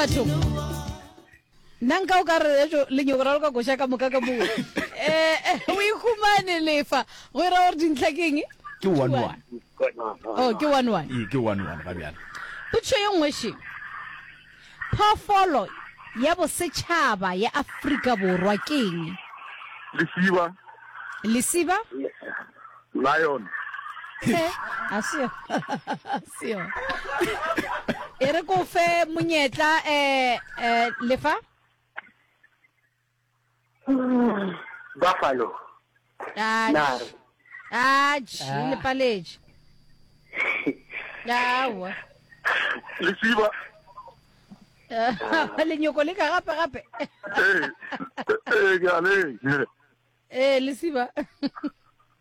batho nna nka o ka re ejo lenyoko ra lo ka koša ka moka ka moo um eh, eh, o ikhumane lefa go ira gore dintlha ke eng ke one one oh ke one one ee ke one one ga bjalo potso ye nngwe sheng Phoofolo ya bosetšhaba ya Afrika Borwa ke eng? Lesiba. Lesiba? Lion. He, a se yo. Se yo. E re ko fe monyetla eh eh lefa. Buffalo. Nare. Atši, Ah. le paletše. Aowa. Lesiba. Eh, Lenyoko le ka gape-gape. Ee, ee, ke a le. Ee, lesiba.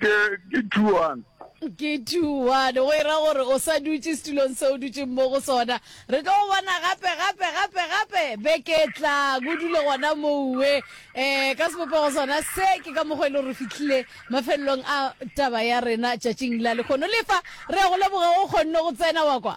Ke, ke two one. Ke two one, go ira gore o sa dutše setulong se o dutšeng mo go sona. Re tlo go bona gape, gape, gape, gape beke e tlang. O dule gona mouwe. Eh, ka sebopego sona se, ke ka mokgwa e le gore re fihlile mafelelong a taba ya rena tšatšing la lekgono. Lefa, re a go leboga go kgonne go tsena wa kwa.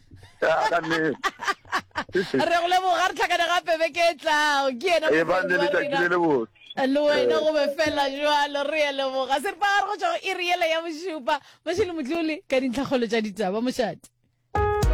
re go leboga re tlhakane gape beke e tlago ke ena e ba le letšatši le le botse le wena go be fela jalo re ya leboga se re pa gare go tšwa go iri yela ya bošupa mošele motlole ka dintlhakgolo tša ditaba mošate